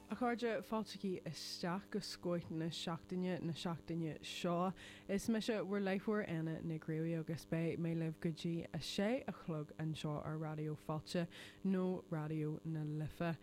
A chairde, fáiltigí isteach go Scoth na seachtaine na seachtaine seo. Is mise bhur láithreoir Éanna Nic Rí agus beidh mé libh go dtí a sé a chlog anseo ar Raidió Fáilte nó Raidió na Life.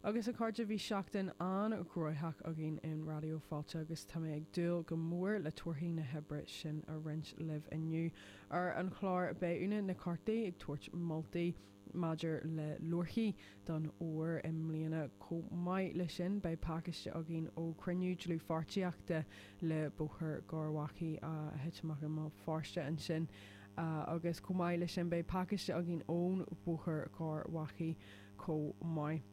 Agus a chairde bhí seachtain an-ghnóitheach againn in Raidió Fáilte agus tá mé ag dúil go mór le torthaí na hoibre sin a roinnt libh inniu. Ar an chlár beidh Úna Nic Cárthaigh ag tabhairt moltaí. Maidir le leabharthaí don fhómhar i mbliana chomh maith le sin beidh pacáiste againn ó chruinniú dlúthpháirtíochta le Bóthar Garbhachaidh a thit amach i mBéal Feirste ansin agus chomh maith le sin beidh pacáiste againn ón Bhóthar Garbhachaidh chomh maith.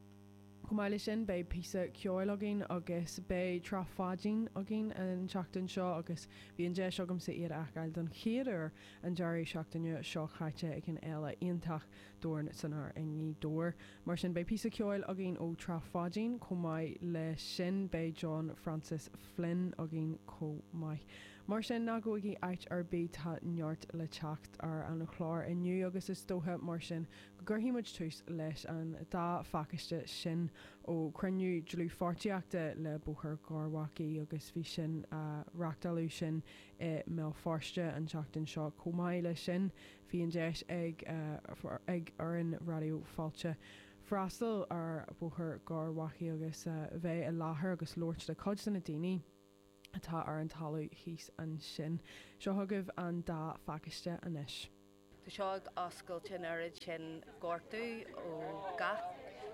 Chomh maith le sin beidh píosa ceoil againn agus beidh Trá Pháidín againn an tseachtain seo agus bhí an deis agamsa iad a fheiceáil don chéad uair an deireadh seachtaine seo chaite ag an Fhéile iontach Dorn san Aer i nGaoth Dobhair. Mar sin beidh píosa ceoil againn ó Trá Pháidín chomh maith le sin beidh John Francis Flynn againn chomh maith. Mar sin ná gabhaigí áit ar bith tá neart le teacht ar an chlár inniu agus is dóiche mar sin gcuirfidh muid tús leis an dá phacáiste sin ó chruinniú dlúthpháirtíochta le Bóthar Gharbhachaidh agus bhí sin á reáchtáil ansin i mBéal Feirste an tseachtain seo chomh maith leis sin bhí an deis ag ag fhoireann Raidió Fáilte freastal ar Bhóthar Gharbhachaidh agus bheith i láthair agus labhairt le cuid de na daoine atá ar an talamh thíos ansin. Seo chugaibh an dá phacáiste anois. Tá seo ag oscailt an oiread sin gortú ó gach,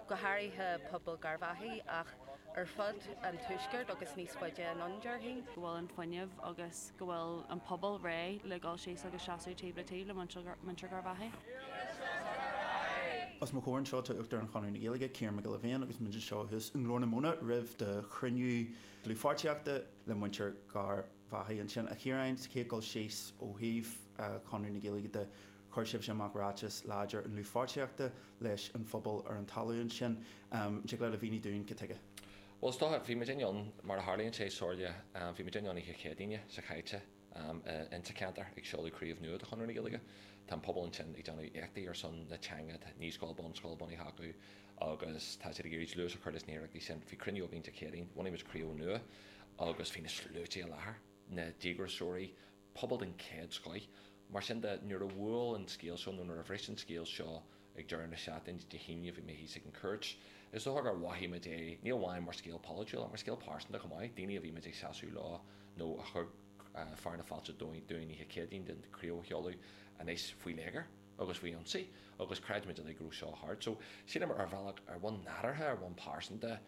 go háirithe pobal Garbhachaidh ach ar fud an tuaiscirt agus níos faide anonn déarfainn. go bhfuil an fuinneamh agus go bhfuil an pobal réidh le dhul síos agus seasamh taobh le taobh le muintir Garbhachaidh. Os mo chomhair anseo tá Uachtarán Chonradh na Gaeilge, Ciarán Mac Giolla Bhéin agus muid anseo thuas i nGlór na Móna roimh do chruinniú dlúthpháirtíochta le muintir Gar. bhachaidh ansin. A Chiaráin, sa chéad dul síos, ó thaobh Chonradh na Gaeilge de, chuir sibhse amach ráiteas láidir i ndlúthpháirtíochta leis an phobal ar an talamh ansin. An dtig leat a mhíniú dúinn cad tuige? Bhuel, is dócha, bhí muid féin ann, mar a tharlaíonn sé, Somhairle, bhí muid féin ann oíche Chéadaoine seo chaite insa cheantar ag seoladh craobh nua de Chonradh na Gaeilge. Tá an pobal ansin ag déanamh éachtaí ar son na teanga, tá naíscoil, bunscoil bunaithe acu agus tá siad ag iarraidh dlús a chur leis na hiarrachtaí sin. Bhí cruinniú againn Dé Céadaoin, bhunaigh muid craobh nua agus bhí na sluaite i láthair, na díograiseoirí, pobal den chéad scoth. Mar sin de, nuair a bhuail an scéal seo, nó nuair a bhris an scéal seo ag deireadh na seachtaine, Dé hAoine, bhí mé thíos ag an Chúirt. Is dócha gur mhothaigh muid é, ní amháin mar scéal polaitiúil, ach mar scéal pearsanta chomh maith, daoine a bhí muid ag seasamh leo, nó a thug fearadh na fáilte dúinn oíche Chéadaoin don chraobh a sheoladh, anois faoi léigear. agus faoi ionsaí agus chreid muid uilig go raibh seo thart so sílim ar bhealach, ar bhonn nádúrtha, ar bhonn pearsanta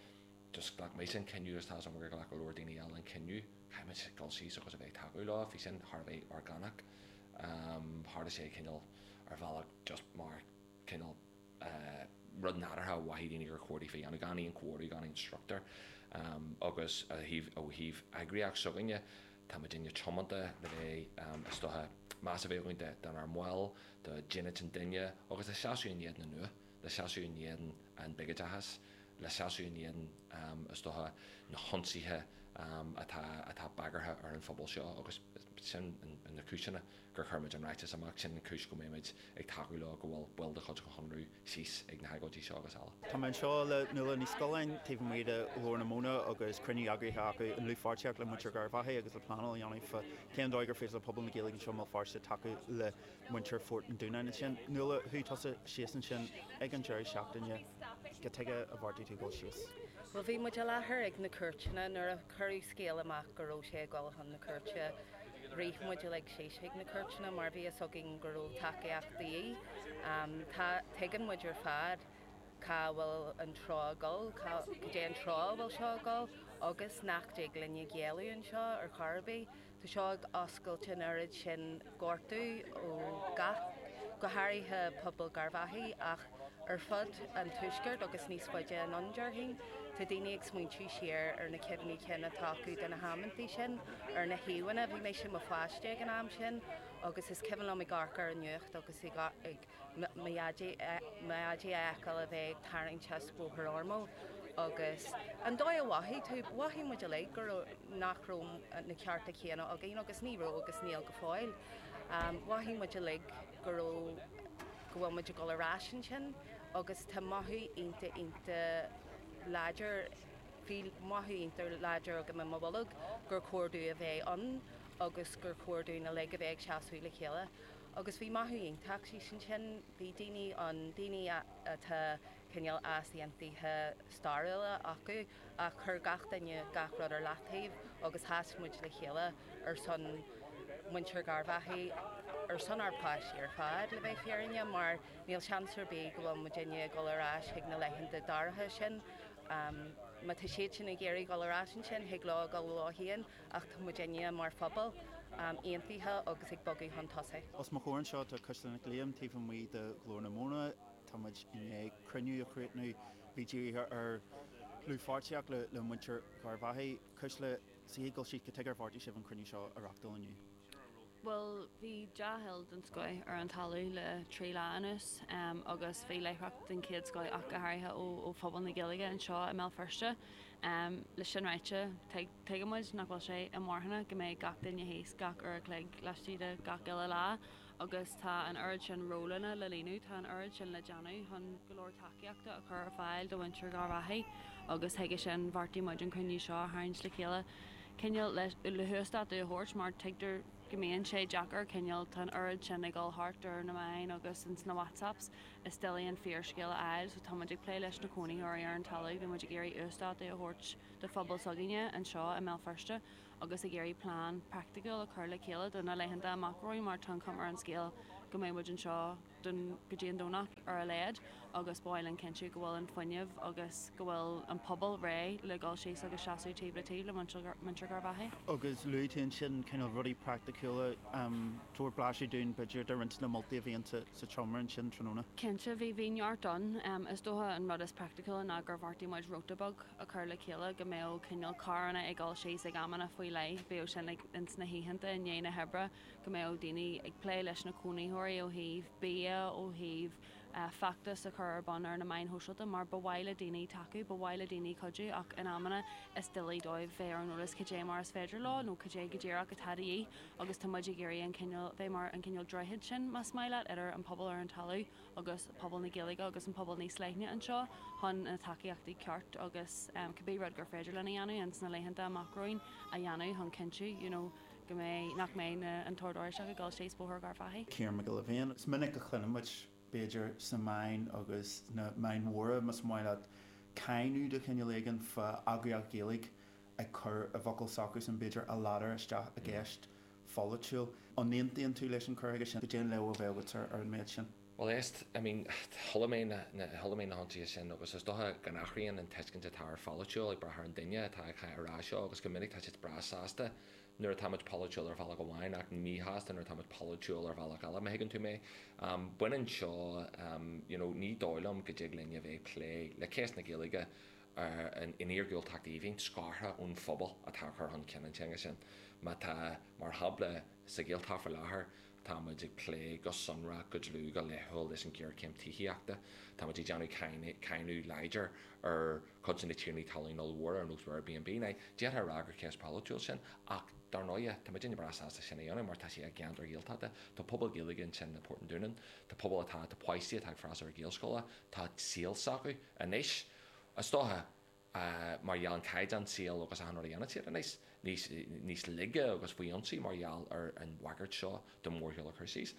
just ghlac mise an cinneadh agus tá 's agam gur ghlac go leor daoine eile an cinneadh caithfimid dul síos agus a bheith ag tacú leo, bhí sin thar a bheith orgánach, tharla sé cineál ar bhealach just mar cineál rud nádúrtha a mhothaigh daoine gur chóir daofa a dhéanamh gan aon chomhairle gan aon struchtúr agus ó thaobh eagraíocht s'againne, Tá muidinne tiomanta le bheith, is dócha, meas a bheith againn dár mbaill, do dhínit an duine agus le seasamh in éadan an fhuath, le seasamh in éadan an biogóideachas, le seasamh in éadan, is dócha, na hionsaithe atá, atá bagartha ar an phobal seo agus sin na cúiseanna gur chuir muid an ráiteas amach, sin an cúis go mbeidh muid ag tacú leo go bhfuil baill de chuid an Chonradh, síos ag na hagóidí seo agus eile. Tá mé anseo le Nuala Ní Scolláin taobh amuigh de Ghlór na Móna agus cruinniú eagraithe acu i ndlúthpháirtíocht le muintir Gharbhachaidh agus le pleanáil a dhéanamh fá cén dóigh gur féidir le pobal na Gaeilge anseo i mBéal Feirste tacú le muintir Phort an Dúnáin ansin. Nuala, chuaigh tusa síos ansin ag an deireadh seachtaine, cad tuige a bheartaigh tú dul síos? Bhuel, bhí muid i láthair ag na cúirteanna nuair a cuireadh scéala amach go raibh sé ag dul chun na cúirte. Rith muid uilig síos chuig na cúirteanna mar bhí fhios againn go raibh tacaíocht de dhíth. Tuigeann muid ar fad cá bhfuil an treo ag dul, cad é an treo a bhfuil seo ag dul agus nach dtig linne géilleadh anseo ar chor ar bith. Tá seo ag oscailt an oiread sin gortú ó gach, go háirithe pobal Garbhachaidh ach, Ar fud an tuaiscirt agus níos faide anonn, déarfainn, tá daoine ag smaointiú siar ar na cuimhní cinn atá acu de na hamanntaí sin ar na híomhánna. Bhí mise i mo pháiste ag an am sin agus is cuimhin liom ag amharc ar an nuacht agus mo dhaidí a fheiceáil a bheith ag tarraingt as Bóthar Ormeau agus an dóigh a mhothaigh tú, mhothaigh muid uilig go raibh, nach raibh na cearta céanna againn agus ní raibh agus níl go fóill. Mhothaigh muid uilig go raibh. go bhfuil muid ag dul ar ais ansin agus tá mothú iontach, iontach láidir, bhí mothú iontach láidir agam i mo bholg gur chóir dúinn a bheith ann agus gur chóir dúinn uilig a bheith ag seasamh le chéile. Agus bhí mothú iontach thíos ansin, bhí daoine ann, daoine atá cineál easaontuithe stairiúla acu, ach chuir gach duine gach rud ar leataobh agus sheas muid le chéile ar son muintir Garbhachaidh, ar son ár bpáistí ar fad le bheith fírinneach mar níl seans ar bith go bhfuil muidinne ag dul ar ais chuig na laethanta dorcha sin. Má tá siad sin ag iarraidh dul ar ais ansin thig leo a dhul leo féin ach tá muidinne mar phobal aontaithe agus ag bogadh chun tosaigh. Os mo chomhair anseo tá Cuisle Nic Liam taobh amuigh de Ghlór na Móna. Tá muid i ndiaidh cruinniú a chríochnú Bhí dírithe ar dhlúthpháirtíocht le muintir Gharbhachaidh, Cuisle, sa chéad dul síos go tuige ar bheartaigh sibh an cruinniú seo a reachtáil inniu? Bhuel bhí dea-thoil den scoith ar an talamh le trí lá anuas agus bhí láithreacht den chéad scoith ach go háirithe ó phobal na Gaeilge anseo i mBéal Feirste. Leis sin ráite, tuigeann muid nach bhfuil sé inmharthana go mbeidh gach duine thíos gach uair a chloig laistigh de gach uile lá. agus tá an oiread sin rólanna le líonadh, tá an oiread sin le déanamh chun go leor tacaíochta a chur ar fáil do mhuintir Gharbhachaidh agus chuige sin bheartaigh muid an cruinniú seo a tharraingt le chéile cineál le huasdátú a thabhairt mar tuigtear go mbíonn sé deacair cineál, tá an oiread sin ag dul thart ar na meáin agus ins na WhatsApps is doiligh an fíorscéal a fháil so tá muid ag plé leis na cónaítheoirí ar an talamh, bhí muid ag iarraidh uasdátú a thabhairt do phobal s'againne anseo i mBéal Feirste. agus ag iarraidh plean praiticiúil a chur le chéile do na laethanta amach romhainn mar tá an chuma ar an scéal go mbeidh muid anseo go dtí an Domhnach ar a laghad agus ba mhaith linn cinntiú go bhfuil an fuinneamh agus go bhfuil an pobal réidh le dhul síos agus seasamh taobh le taobh le muintir Gharbhachaidh. Agus luaigh tú ansin cineál rudaí praiticiúla, tabhair blaiseadh dúinn b'fhéidir de roinnt de na moltaí a bhí sa tseomra ansin tráthnóna. Cinnte, bhí neart ann. Is dócha an rud is praiticiúla ná gur bheartaigh muid róta beag, a chur le chéile go mbeadh cineál carranna ag dul síos ag amanna faoi leith, bíodh sin ag, ins na hoícheanta i ndiaidh na hoibre go mbeadh daoine ag plé leis na cónaítheoirí ó thaobh bia, ó thaobh eh feachtas a chur ar bun ar na meáin shóisialta mar ba mhaith le daoine tacú, ba mhaith le daoine cuidiú ach in amanna is doiligh dóibh bheith ar an eolas cad é mar is féidir leo nó cad é go díreach atá de dhíth agus tá muid ag iarraidh an cineál, bheith mar an cineál droichead sin más maith leat idir an pobal ar an talamh agus pobal na Gaeilge agus an pobal níos leithne anseo chun na tacaíochtaí ceart agus cibé rud gur féidir linn a dhéanamh ins na laethanta amach romhainn a dhéanamh chun cinntiú you know go mbeidh nach mbeidh na an tOrd Oráisteach ag dul síos Bóthar Gharbhachaidh. Ciarán Mac Giolla Bhéin, is minic a chluineann muid, b'fhéidir sna meáin agus sna meáin mhóra más maith leat, cáineadh de chineál éigin fá eagraíocht Ghaeilge ag cur a bhfocal s'acusan b'fhéidir a ladar isteach i gceist pholaitiúil. An n-aontaíonn tú leis an chur chuige sin? Cad é an léamh a bheadh agat ar an méid sin? Bhuel, a St, I mean, chuala mé na, na, chuala mé na hionsaithe sin agus is dócha go n-athraíonn an tuiscint atá ar pholaitiúil ag brath ar an duine atá á rá seo agus go minic tá siad breá sásta nuair atáimid polaitiúil ar bhealach amháin ach míshásta nuair atáimid polaitiúil ar bhealach eile, má thuigeann tú mé. Baineann seo, you know, ní dóigh liom go dtig linn a bheith ag plé le cás na Gaeilge in iargúltacht aoibhinn scartha ón phobal atá ag cur chun cinn an teanga sin. Má tá, mar shampla, sa Ghaeltacht faoi láthair, tá muid ag plé go sonrach, go dlúth, go laethúil leis an ghéarchéim tithíochta. Tá muid ag déanamh cáineadh láidir ar chuid de na tiarnaí talún ollmhóra ar nós Airbnb. D'fhéadfá a rá gur ceist pholaitiúil sin ach dar ndóigh tá muidinne breá sásta sin a dhéanamh mar tá sé i gceantar Ghaeltachta. Tá pobal Gaeilge ansin i bPort an Dúnáin, tá pobal atá, tá páistí atá ag freastal ar Ghaelscoil, tá saol s'acu anois. Is dócha, mar gheall an caighdeán saoil agus achan rud a dhéanann siad anois, níos, níos laige agus faoi ionsaí mar gheall ar an bhagairt seo de mhórshiúl a chur síos.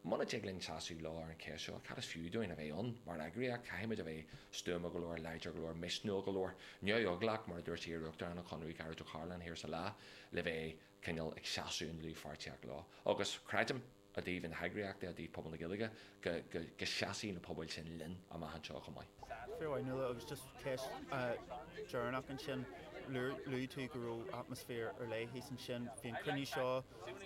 Muna dtig linn seasamh leo ar an cheist seo, cad is fiú dúinn a bheith ann mar eagraíocht? Caithfidh muid a bheith stuama go leor, láidir go leor, misniúil go leor, neamheaglach, mar a dúirt iar-uachtarán an Chonradh, Gearóid Ó Cairealláin thiar sa lá, le bheith cineál ag seasamh i ndlúthpháirtíocht leo. Agus creidim. i dtaobh na heagraíochta, i dtaobh pobal na Gaeilge, go seasfaidh na pobail sin linn amach anseo chomh maith. Fíor. Fionnuala, agus just ceist deireanach ansin, luaigh tú go raibh atmaisféar ar leith thíos ansin. Bhí an cruinniú seo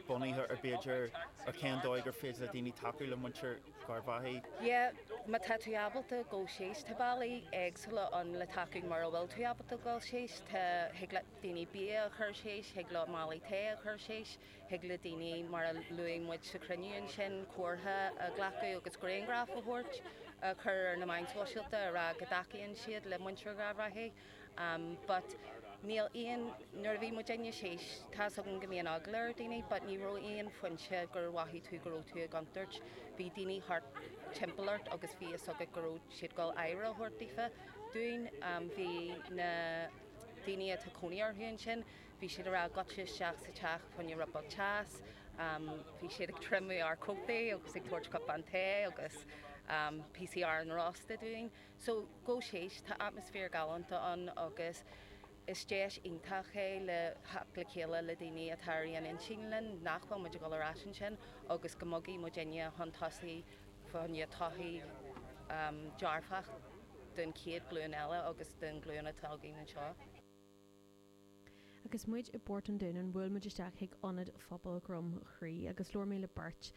bunaithe ar b'fhéidir ar cén dóigh gur féidir le daoine tacú le muintir Gharbhachaidh. Yeah, má tá tú ábalta dul síos, tá bealaí éagsúla ann le tacú mura bhfuil tú ábalta dul síos. Tá, thig le daoine bia a chur síos, thig leo málaí tae a chur síos. Thig le daoine, mar a luaigh muid sa chruinniú ansin, comhartha a ghlacadh agus grianghraif a thabhairt, a chur ar na meáin shóisialta, a rá go dtacaíonn siad le muintir Gharbhachaidh, but níl aon, nuair a bhí muidinne síos, tá's agam go mbíonn eagla ar daoine but ní raibh aon phointe gur mhothaigh tú go raibh tú i gcontúirt. Bhí daoine thart timpeall ort agus bhí fhios agat go raibh siad dul aire a thabhairt daofa, dúinn. Bhí na daoine atá cónaí orthu ansin, Bhí siad ag rá goitse isteach sa teach fá choinne rud beag teas, bhí siad ag triomú ár cótaí agus ag tabhairt cupán tae agus píosaí aráin rósta dúinn. So gabh síos tá atmaisféar galánta ann agus is deis iontach é le theacht le chéile le daoine atá ar aon intinn linn nach bhfuil muid a' goil ar ais ansin agus go mbogfaidh muidinne chun tosaigh fá choinne todhchaí dearfach don chéad ghlúin eile agus don ghlúin atá againn anseo. Agus muid i bPort an Dúnáin bhuail muid isteach chuig Ionad Phobal Dhroim Chrí agus labhair mé le beirt,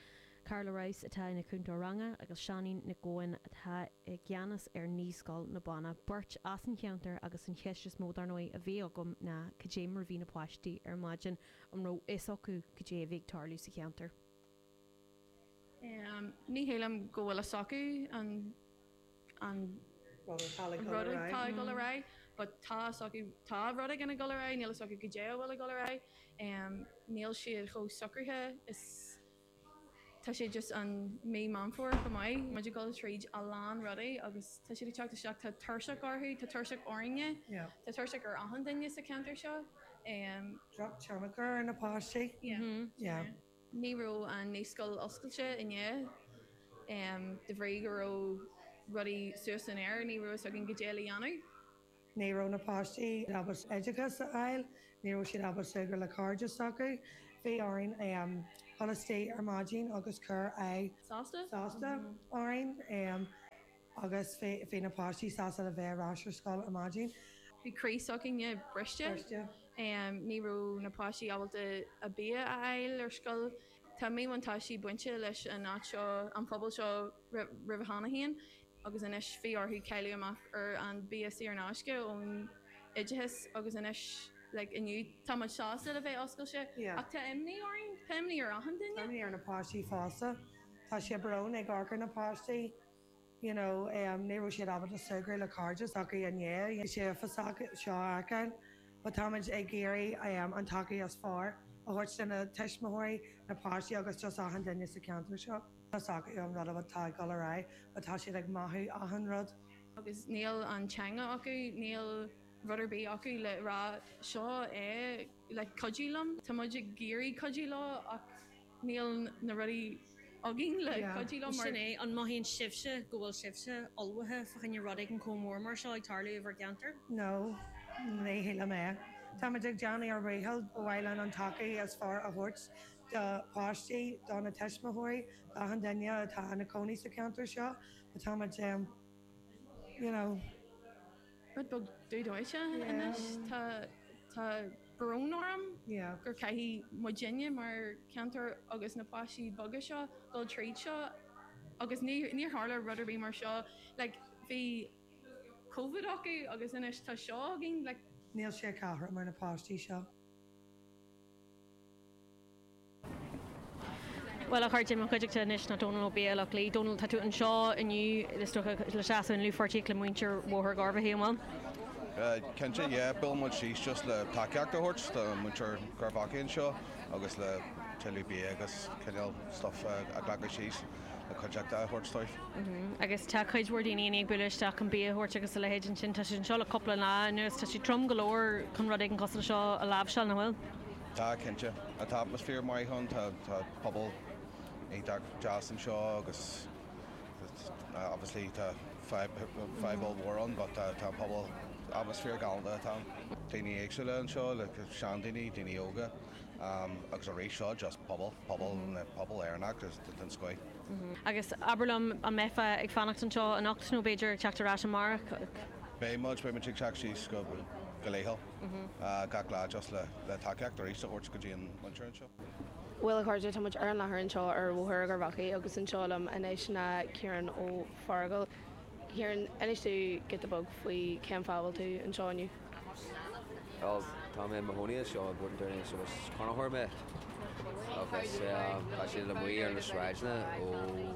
Carla Rouse atá ina cúntóir ranga agus Seáinín Nic Eoin atá i gceannas ar Naíscoil na Banna, beirt as an cheantar agus an cheist is mó dar ndóigh a bhí agam ná cad é mar a bhí na páistí ar maidin, an raibh fhios acu cad é a bhí ag tarlú sa cheantar? Ní shílim go bhfuil a fhios acu an rud atá ag dul ar aghaidh but tá a fhios acu, tá rud éigin ag dul ar aghaidh, níl a fhios acu goidé a bhfuil ag dul ar aghaidh. Níl siad chomh socraithe is tá sé just an mí Meán Fómhair chomh maith, muid ag dul tríd a lán rudaí agus tá siad ag teacht isteach, tá tuirseach orthu, tá tuirseach orainne, tá tuirseach ar achan duine sa cheantar seo. Droch tionchar ar na páistí. Yeah. Ní raibh an naíscoil oscailte inné. De bhrí go raibh rudaí suas san aer ní raibh a fhios againn goidé le dhéanamh. Ní raibh na páistí ábalta oideachas a fháil, ní raibh siad ábalta súgradh le cairde s'acu. Bhí orainn dhul istigh ar maidin agus cur aghaidh sásta orainn. agus bhí na páistí sásta le bheith ar ais ar scoil ar maidin. Bhí croí s'againne briste. Ní raibh na páistí ábalta a bia a fháil ar scoil. Tá míbhuntáistí bainte leis an áit seo, an pobal seo roimhe cheana féin agus anois bhí orthu cailleadh amach ar an bia saor in aisce ón oideachas agus anois like inniu tá muid sásta le bheith oscailte ach tá imní orainn, tá imní ar achan duine. Tá imní ar na páistí fosta. Tá sé brónach ag amharc ar na páistí. you know, ní raibh siad ábalta súgradh le cairde s'acu i ndiaidh an sé uafásach seo a fheiceáil but táimid ag iarraidh an tacaíocht is fearr a thabhairt do na tuismitheoirí, na páistí agus just achan duine sa cheantar seo. Tá a fhios acu an rud atá ag dul ar aghaidh but tá siad ag mothú achan rud. agus níl an teanga acu, níl rud ar bith acu le rá seo é le cuidiú liom, tá muid ag iarraidh cuidiú leo ach. Níl na rudaí againn le cuidiú leo mar. Sin é, an mothaíonn sibhse go bhfuil sibhse ullmhaithe fá choinne rud éigin chomh mór mar seo ag tarlú i bhur gceantar? No, ní shílim é. Táimid ag déanamh ár ndícheall, ba mhaith linn an tacaíocht is fearr a thabhairt do páistí, do na tuismitheoirí, d'achan duine atá ina cónaí sa cheantar seo, but táimid em, you know. rud beag dubh dóite anois. Tá tá brón orm gur caithfidh muidinne mar cheantar agus na páistí beaga seo dul tríd seo agus níor níor tharla rud ar bith mar seo like bhí Covid acu agus anois tá seo againn like Níl sé cothrom ar na páistí seo. Bhuel, a chairde, i mo chuideachta anois ná Dónal Ó Beaghlaoich-Lee. Dónal, tá tú anseo inniu, is dócha, le seasamh i ndlúthpháirtíocht le muintir Bhóthar Gharbhachaidh, an bhfuil? Cinnte, yeah, bhuail muid síos just le tacaíocht a thabhairt do muintir Gharbhachaidh anseo agus le tuilleadh bia agus cineál stuff a ghlacadh síos le cuideachta a thabhairt dóibh. Agus tá cuid mhór daoine i ndiaidh bualadh isteach chun bia a thabhairt agus a leithéid ansin. Tá siad anseo le cúpla lá anuas, tá sé trom go leor chun rud éigin cosúil leis seo a láimhseáil, nach bhfuil? Tá cinnte. Tá atmaisféar maith ann, tá pobal iontach deas anseo agus obviously tá fadhb ollmhór ann but tá an pobal, atmaisféar galanta atá ann. Daoine éagsúla anseo, seandaoine, daoine óga agus arís seo just pobal, pobal, pobal Éireannach den scoth. Agus abair liom, an mbeifeá ag fanacht anseo anocht nó b'fhéidir ag teacht ar ais amárach? Beidh muid, beidh muid ag teacht síos go laethúil. gach lá just le tacaíocht arís a thabhairt go dtí an mhuintir anseo. Bhuel a chairde, tá muid ar an láthair anseo ar Bhóthar Gharbhachaidh agus anseo liom anois ná Ciarán Ó Fearghail. Ciarán, inis domh giota beag faoi cén fáth a bhfuil tú anseo inniu? Bhuel, tá mé i mo chónaí anseo i bPort an Dúnáin agus is cónaitheoir mé agus tá siad amuigh ar na sráideanna ó.